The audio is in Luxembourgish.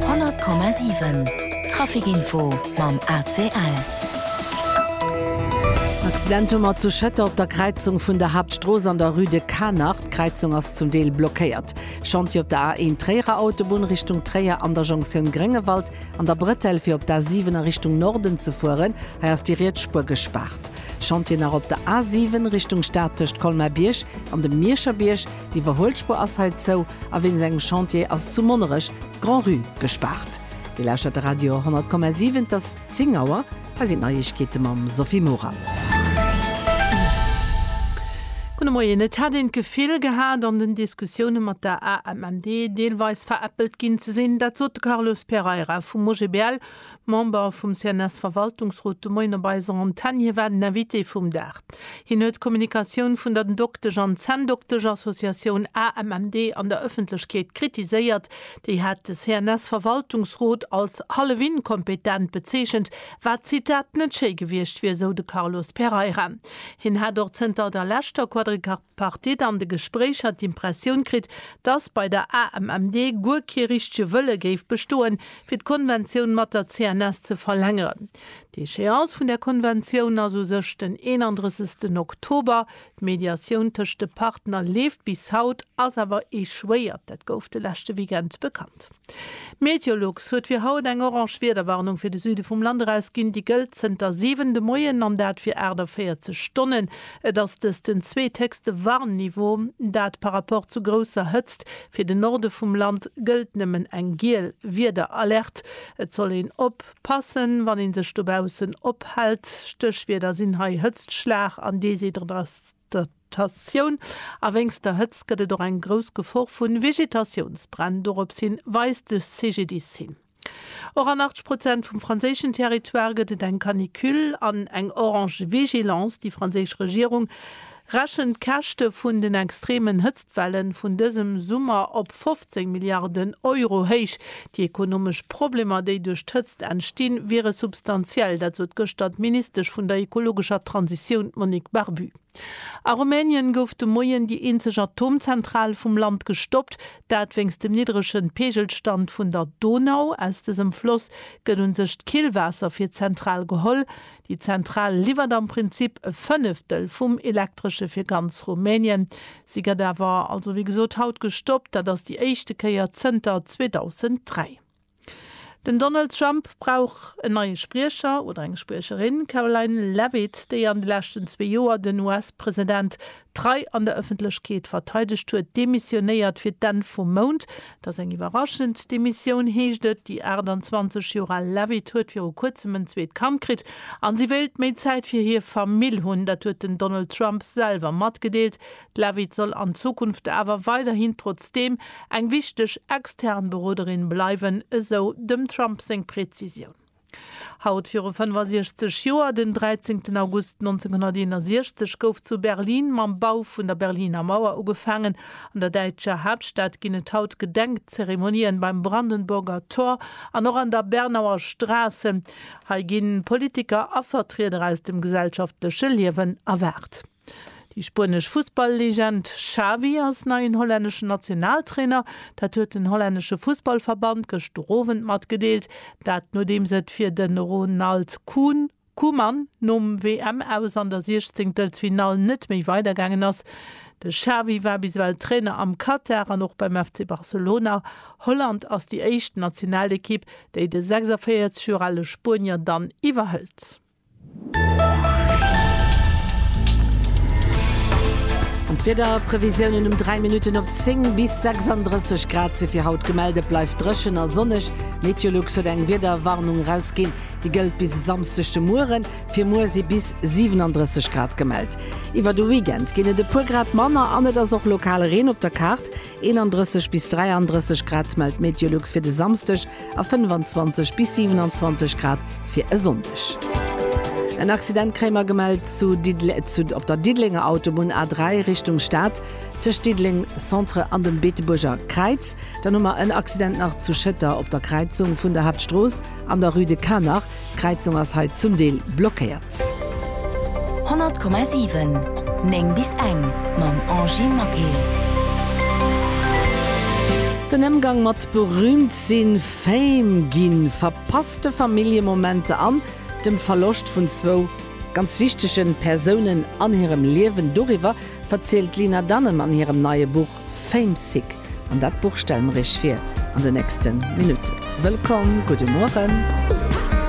100,7 Trafikinfo mam ACL. Accident hu mer zu Schëtter op der Kräizung vun der Haaptstrooss an der Rue de Canach. D'Kräizung ass zum Deel blockéiert. Chantier op der A1 Tréierer Autobunn Richtung Tréier an der Jonctioun Gréngewald an der Bretelle fir op d'A7 a Richtung Norden ze fueren. Hei ass déi riets Spuer gespaart. Chantier nach op der A7 Richtung Stad tëscht Colmar-Bierg an dem Mierscher Bierg. Déi Iwwerhuelspur ass hei zou a wéinst engem Chantier ass zu Monnerech d'Grand-Rue gespaart. Dir lauschtert de Radio 100,7, et ass 10 Auer. Hei sinn d'Neiegkeete mam Sophie Morang. Gudde Moien. Et hätt een d'Gefill gehat, an den Diskussioune mat der AMMD deelweis veräppelt ginn ze sinn. Dat sot de Carlos Pereira vum OGBL, Member vum CNS-Verwaltungsrot de Moien op eiser Antenn. Hie war den Invité vum Dag. Hien huet d'Kommunikatioun vun der D'Doktesch an Zänndoktesch-Associatioun AMMD an der Ëffentlechkeet kritiséiert. Déi hat de CNS-Verwaltungsrot als hallef-inkompetent bezeechent, wat, Zitat, net schéi gewiescht wier, sou de Carlos Pereira. Hien hat och zënter der leschter Quadripartite, D'Partite an de Gespréicher d'Impressioun kritt, datt bei der AMMD guer kee richtege Wëlle géif bestoen, fir d'Konventioun mat der CNS ze verlängeren. D'Echéance vun där Konventioun ass u sech den 31 Oktober. D'Mediatioun tëscht de Partner leeft bis haut, ass awer echouéiert. Dat gouf de leschte Weekend bekannt. Meteolux huet fir haut eng orange Wiederwarnung fir de Süde vum Land erausginn. Déi gëllt zënter 7 de Moien an dat fir 48 Stonnen. Et ass dëst den zweethéchste Warnniveau, dat par rapport zu grousser Hëtzt. Fir de Norde vum Land gëllt nëmmen eng giel Wiederalert. Et soll een op passen, wann ee sech dobaussen ophält. Stéchwierder sinn hei Hëtztschlag an Déshydratation. Tatioun a wéinst der Hëtzt gëtt et och eng grouss Gefor vu Vegetatiounsbränn, dorops hi weist de CGDIS-Syn. Och an 80 Prozent vum franséischen Territoire gëtt et eng Canicule an eng orange Vigilance. Déi franséisch Regierung rechent d'Käschte vun den extreemen Hëtztwelle vun dësem Summer op 15 Milliarden Euro héich. Déi ekonomesch Problemer, déi duerch d'Hëtzt entstinn, wiere substantiell. Dat sot gëschter d'Ministesch vun der ekologescher Transitioun, d'Monique Barbu. A Rumänien gouf de Moien déi eenzeg Atomzentral vum Land gestoppt, dat wéinst dem niddrege Peegelstand vun der Donau. Aus dësem Floss gëtt un sech d'Killwaasser fir d'Zentral geholl. Déi Zentral liwwert am Prinzip e Fënneftel vum Elektresche fir ganz Rumänien. Si gëtt awer also wéi gesot haut gestoppt. Dat ass déi éischte Kéier zënter 2003. Den Donald Trump brauch en neie Spriecher oder eng Spriecherin. D'Karoline Leavitt, déi an de leschten zwee Joer den US-President trei an der Ëffentlechkeet verteidegt huet, demissionéiert fir d'Enn vum Mount. Et ass eng iwwerraschend Demissioun, heescht et. Déi 28 Joer al Leavitt huet viru kuerzem en zweet Kand kritt a si wéilt méi Zäit fir hir Famill hunn. Dat huet den Donald Trump selwer matgedeelt. D'Levitt soll an Zukunft awer weiderhin trotzdeem eng wichteg extern Beroderin bleiwen, esou dem Trump seng Prezisioun. Haut viru 65 Joer, den 13 August 1961, gouf zu Berlin mam Bau vun der Berliner Mauer ugefaangen. An der däitscher Haaptstad ginn et haut Gedenkzeremonien beim Brandenburger Tor an och an der Bernauer Straße. Hei gi Politiker a Vertrieder aus dem gesellschaftleche Liewen erwaart. Déi spuenesch Fussball-Legend Xavi ass neien hollänneschen Nationaltrainer. Dat huet den hollännesche Fussballverband gëschter Owend matgedeelt. Dat nodeems et fir de Ronald Koeman nom WM-Aus an der Siechzéngtelsfinall net méi weidergaangen ass. De Xavi war bis ewell Trainer am Katar an och beim FC Barcelona. Holland ass déi éischt Nationalekipp, déi de 46 Joer ale Spuenier dann iwwerhëlt. An d'Wiederprevisiounen, Um 3 Minutten op 10 bis 36 Grad si fir haut gemellt. Et bleift dréchen a sonneg. Meteolux huet eng Wiederwarnung erausginn, déi gëllt bis e Samsdeg de Mueren. Fir muer si bis 37 Grad gemellt. Iwwer de Weekend ginn et e puer Grad manner an et ass och lokal Reen op der Kaart. 31 bis 33 Grad mellt d'Meteolux fir de Samsdeg a 25 bis 27 Grad fir e Sonndeg. En Accident kréie mer gemellt zu Didde op der Diddelenger Autobunn A3 Richtung Stad, tëscht Diddeleng Centre an dem Beetebuerger Kräiz. Dann hu mer en Accident nach zu Schëtter op der Kräizung vun der Haaptstrooss an der Rue de Canach. D'Kräizung ass hei zum Deel blockéiert. 100,7 9 bis eng mam Angie Maquet. Den Ëmgang mat berüümt sinn, Fame ginn, verpasste Familljemomenter an dem Verloscht vun zwou ganz wichtege Persounen an hirem Liewen, doriwwer verzielt d'Lina Dunham an hirem neie Buch Famesick. An dat Buch stelle mer Iech vir an de nächste Minutten. Wëllkomm, gudde Mueren.